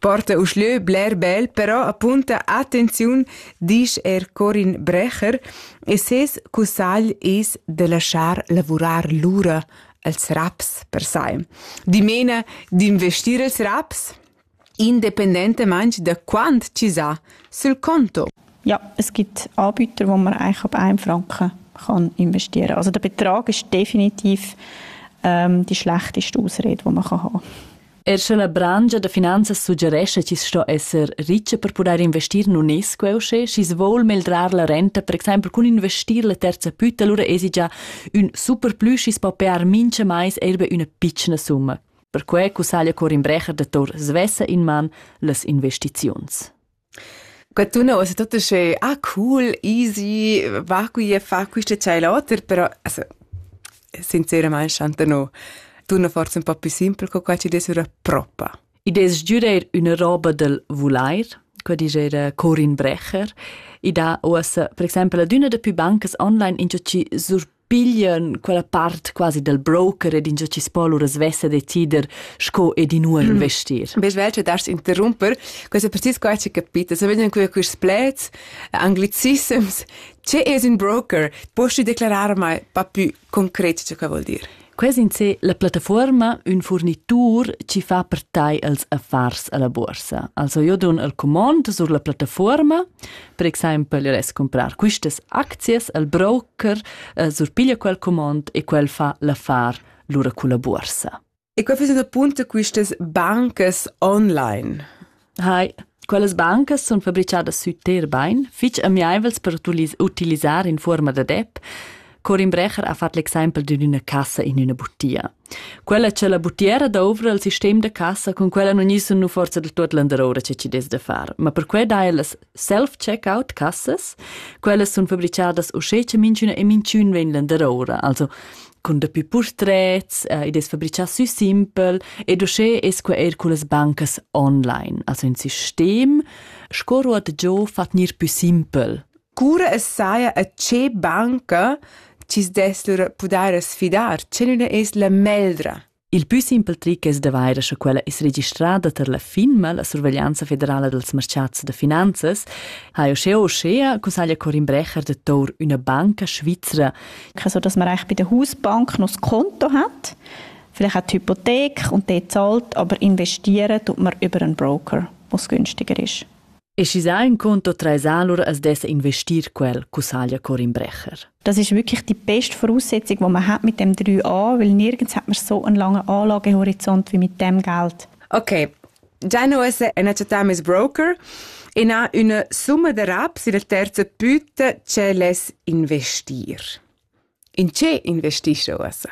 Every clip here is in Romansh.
Porta uschlö bler bel, però apunta attenziun, disch er Corin Brecher, e ses cussagl es da laschar lavurar lura als raps per sai. Dimena d'investir els raps independentamaing da quant chi s'ha sul conto. Ja, es gibt Anbieter, wo man eigentlich ab 1 Franken kann investieren kann. Also der Betrag ist definitiv ähm, die schlechteste Ausrede, die man haben kann. Er sche la brangia da finanzas suggerescha chi sto esser richa per pudair investir in UNESCO usche, schi's voul meldrar la renta, per exempel cun investir la terza pütta, lura esi già ün superplü schi's po pear mincha mais eir be üna pitschna summa. Perque cussaglia Corin Brecher da Tor svessa in man las investiziuns. Qua tuna ussa tut uschè «Ah cool, easy, va qui e fa quist e tschai l'oter», però also sinceramaing chanta no tuna forsa ün po più simpel co qua chi dess üra propa. I dess giüdair üna roba dal vulair, qua dischera Corin Brecher. I dà uossa per exaimpel ad üna da pü bancas online ingio chi sur piglian quella part quasi dal broker ed ingiò chi spo lura svessa decider sco ed inua investir. Bes vel che dar's interrumper, questo precis qua ci capita, se vediam qui quist plets anglicisms, che es un broker? Posti declarar mai pa più concret che vuol dir? Ques in se la plattafuorma ün furnitur chi fa per tai els affars alla borsa. Also io dun el comond sur la plattafuorma, per exaimpel io res comprar quistas aczias al broker eh, surpiglia quel comond e quel fa l'affar lura culla borsa. E qua fes appunto quistas bancas online. Hai, quellas bancas sun fabrichadas sü ter bain, fich amiaivels per utilisar in fuorma dad app. Corin Brecher ha fat l'exaimpel d'ün üna cassa in üna butia. Quella c'è la butiera douvra il sistem da cassa, con quella non gnissum nu forza da tuot landaroura che ci des da far, ma per que dai ellas self-checkout cassas. Quellas sun fabricadas uschè cha minchüna e minchün vegn landeroura. Also cun dapü purtrets, eh, id es fabrichà sü simpel ed uschè es que eir cullas bancas online. Also ün sistem sco ruot giò fa gnir pü simpel. Cura es saja a che banca chi's dess lur pudair sfidar, che nun es la meglra? Il pü simpel tric es da vair scha quella es registrada tar la FINMA, la Surveglianza federala dels merchats da finanzas, ha uschea uschea cussaglia Corin Brecher de Tour üna banca svizra. Ich so, dass man eigentlich bei der Hausbank noch das Konto hat, vielleicht auch die Hypothek und die zahlt, aber investieren tut man über einen Broker, was günstiger ist. E schi sa in conto trais allura as dessa investir quel, cussaglia Corin Brecher. Das ist wirklich die beste Voraussetzung, die man hat mit dem 3a, weil nirgends hat man so einen langen Anlagehorizont wie mit dem Geld. Okay, Gianno ist eine Ms. Broker und ha eine Summe darauf, sie der terze Büte, ce les investir. In che investis jeu ussa?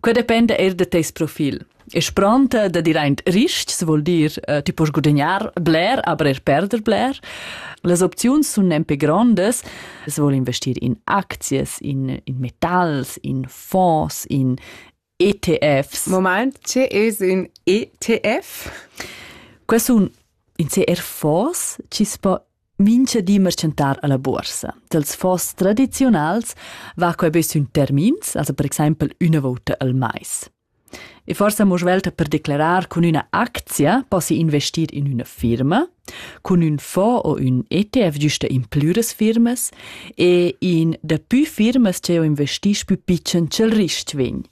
Quei dependa eir da teis profil. E spronta da dir aint rists vuol dir uh, ti poss guadagnar bler, aber er perder bler. Las opziuns sun nempe grondas. Es vuol investir in aczias, in, in metals, in fonds, in ETFs. Moment, tge es ün ETF? Quai sun in se er fonds chi's po mincha di merchantar a la buorsa. Dels fonds tradiziunals va quai be sün termins, also per exaimpel üna vouta al mais. E forsa mo svelta per declarar cun üna actia possi investir in üna firma, Cun ün fond o ün ETF güsta implü das firmas e in da pü firmas ch'eau investisch pü pitschen cha'l rist vegn.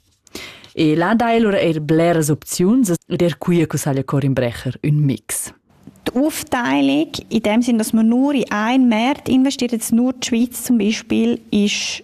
E là dai lura eir bleras opziuns ed eir quia cussaglia Corin Brecher ün mix. Die Aufteilung, in dem Sinn, dass man nur in einen Markt investiert, jetzt nur die Schweiz zum Beispiel, ist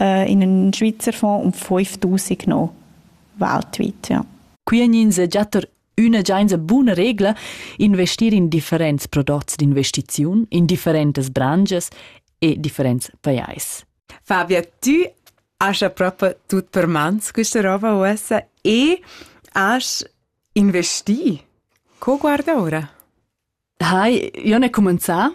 in ün Schweizerfonds um 5000 no weltweit, ja. Quienin se giatter üna giainsa buna regla investir in differents prodots d'investiziun, in differentas branches e differents pajais. Fabia, tu hast ja proprio tut per mans questa roba uossa e hast investi. Co guarda ora? Hai, io n'he cumanzà.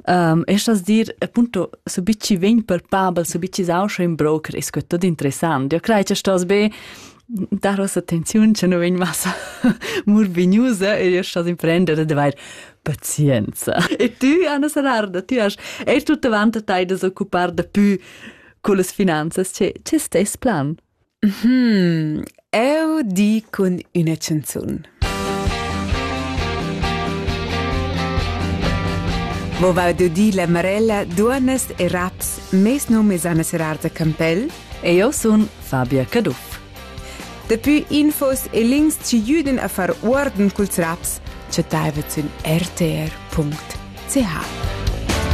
Um, e stas dir, appunto, so bit chi vegn palpabel, so bit chi sauscha in broker, es que tot interessant. Io crei cha stos be dar ossa attenziun che nu vegn massa murvignusa e io stos imprender ad avair pazienza. E tu, Anna Sararda, tu hast eir tut avant a tai da s'occupar da pü cullas finanzas. Che, che stess plan? Hm, eu di cun üna chanzun. Mo va dudi la Marella duonas e raps mes num es Anna Serarta Campell e io sun Fabia Caduff. Dapi infos e links ci jüden a far uorden culs raps chattaivet sün rtr.ch.